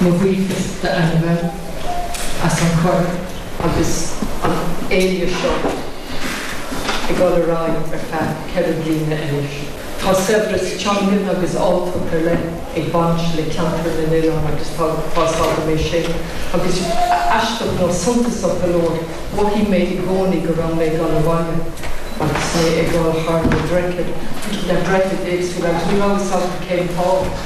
Mo bhuíochas d'Ainbhe as an gcuireadh agus an fhéile seo ag dul ar aghaidh ar feadh ceithre bliana anois. Tá saibhreas teangan agus áilleacht ar leith ag baint le Ceantar na nOileán agus tá fhios agam é sin agus aisteach nó suntasach go leor mhothaigh mé i gcónaí go raibh mé ag dul abhaile agus mé ag dul thar na droichid, na droichid éagsúla agus ní raibh a fhios agam cén fáth.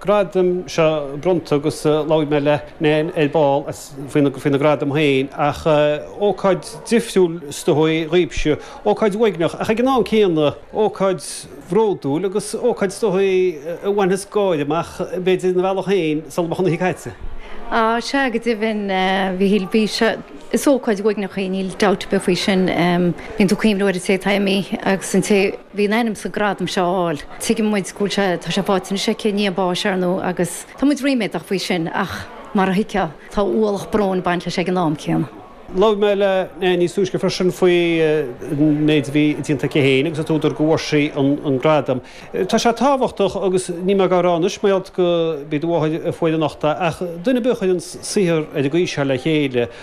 gradaim seo bronnta agus labhair mé le Nan ar ball faoi na gradaim féin ach ócáid difriúil is dóichí dhaoibhse, ócáid uaigneach ach ag an am céanna ócáid bhródúil agus ócáid is dóichí a bhainfeas gáire amach b'fhéidir ina bhealach féin sula mbeadh an oíche caite. Sea go deimhin Mhichíl, bhí sé, is ócáid uaigneach í, níl dabht ar bith faoi sin. Bíonn tú ag cuimhneamh ar an té atá imithe agus an té, bhí in ainm is an gradam seo a fháil. Tuigeann muid go bhfuil sé, tá sé faighte anois aici i ndiaidh a báis, ar ndóigh, agus tá muid ríméadach faoi sin ach mar a thuigfeá, tá ualach bróin ag baint leis ag an am céanna. Labhair mé le Nell níos túisce freisin faoi an méid a bhí déanta aici féin agus an t-údar go bhfuair sí an gradam. Tá sé tábhachtach agus níl mé dhá rá anois, mar gheall gob í do mháthair a fuair anocht é, ach duine ar bith a chuireann saothar ar an gcaoi seo le chéile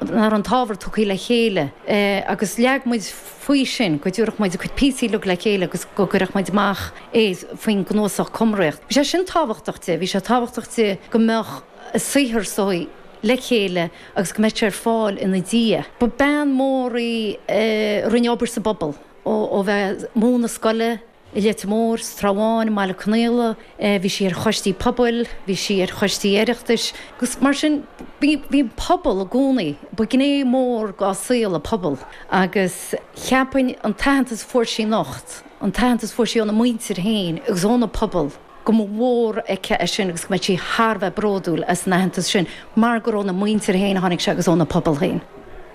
ar an t-ábhar tugtha le chéile agus leag muid faoi sin go dtabharfadh muid a cuid píosaí uilig le chéile agus go gcuirfeadh muid amach é faoin gcnuasach Cumraíocht. Bhí sé sin tábhachtach di, bhí sé tábhachtach di go mbeadh a saothar só le chéile agus go mbeadh sé ar fáil ina diaidh. Ba bean mhór í a rinne obair sa bpobal, ó bheith ag múineadh scoile, I Leitir Móir, sa Trá Bháin, i mBaile Conaola, bhí sí ar choistí pobail, bhí sí ar choistí Oireachtais agus mar sin bhí an pobal i gcónaí, ba ghné mhór dá saol an pobal agus cheapfainn an t-aitheantas a fuair sí anocht, an t-aitheantas a fuair sí óna muintir féin agus óna pobal. go mba mhór aici é sin agus go mbeadh sí thar a bheith bródúil as an aitheantas sin mar gur óna muintir féin a tháinig sé agus óna pobal féin.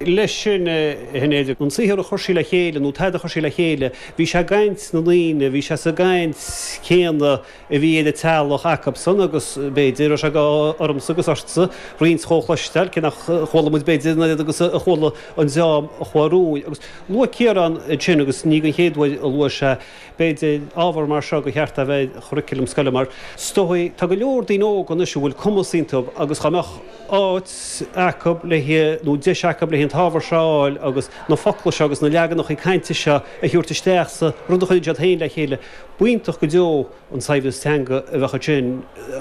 Leis sin, a Shinéad, an saothar a chuir sí le chéile, nó an t-ábhar a chuir sí le chéile, bhí sé i gcaint na ndaoine, bhí sé sa gcaint chéanna a bhí ag an teaghlach acubsan agus, b'fhéidir, go raibh sé d'ádh ormsa agus ortsa roinnt dhó a chloisteáil, cé nach chuala muid, b'fhéidir, an oiread agus a chuala an dream a chuaigh romhainn. Agus luaigh Ciarán ansin, agus ní den chéad uair a luaigh sé, b'fhéidir ábhar mar seo gur cheart a bheith ar churriculum scoile mar is dóichí, tá go leor daoine óga anois a bhfuil cumas iontu agus dá mbeadh áit acu le nó deis acu le an t-ábhar seo a fháil agus na focla seo agus na leaganacha cainte seo a thabhairt isteach sa rud a chuireann siad féin le chéile, b'iontach go deo an saibhreas teanga a bheadh ansin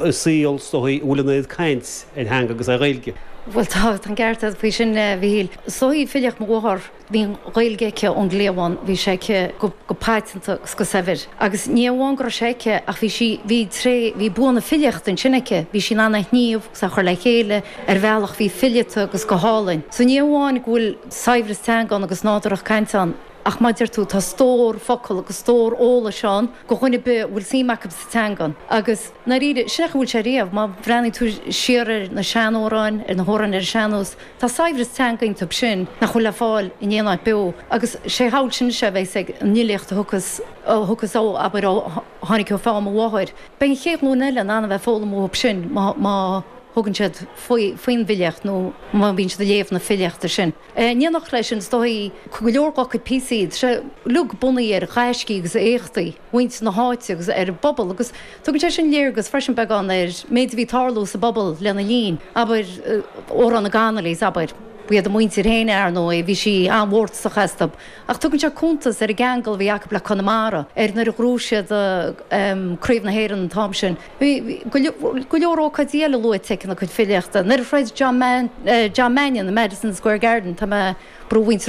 i saol is dóichí a bhfuil an oiread caint ar theanga agus ar Ghaeilge. Bhuel, tá an ceart agat faoi sin, a Mhichíl. Is dóichí filíocht mo mháthar. Bhí an Ghaeilge aici ón gcliabhán, bhí sé aici go paiteanta agus go saibhir. Agus ní amháin go raibh sé aici ach bhí sí, bhí tréith, bhí bua na filíochta ansin aici, bhí sí in ann é a shníomh agus é a chur le chéile ar bhealach a bhí fileata agus go hálainn. So ní amháin go bhfuil saibhreas teanga ann agus nádúrthacht cainte ann ach mar a deir tú, tá stór focal agus stór eolais ann go dhuine ar bith a bhfuil suim acub sa teanga. Agus, i ndáiríre, sin é a bhfuil sé riamh. Má bhreathnaíonn tú siar ar na seanamhráin, ar na hamhráin ar an sean-nós, Tá saibhreas teanga iontub sin nach bhfuil le fáil in aon áit beo agus sé shamhail sin is ea a bheas ag an bhfilíocht a thugas, a thugas ó, abair, ó tháinig ó pheann mo mháthair. Beidh an chéad ghlúin eile in ann a bheith ag foghlaim uathub sin má, má thugann siad faoi, faoin bhfilíocht nó má bhíonn siad ag léamh na filíochta sin. In éineacht le sin is dóigh go leor dhá cuid píosaí, sé, uilig bunaithe ar ghaiscí agus éachtaí. mhuintir na háite agus ar an bpobal agus tugann sé sin léargas freisin beagán ar an méid a bhí ag tarlú sa bpobal lena linn, abair, Amhrán na Connollys, abair. Ba iad a muintir féin, ar ndóigh, bhí sí an-mhórtasach astub ach tugann sé cuntas ar an gceangal a bhí acub le Conamara, ar nuair a ghnóthaigh siad Craobh na hÉireann an t-am sin. Bhí go leor ócáidí eile luaite aici ina cuid filíochta. Nuair a throid John Mannion i Madison Square Garden, tá mé, brú mhuintir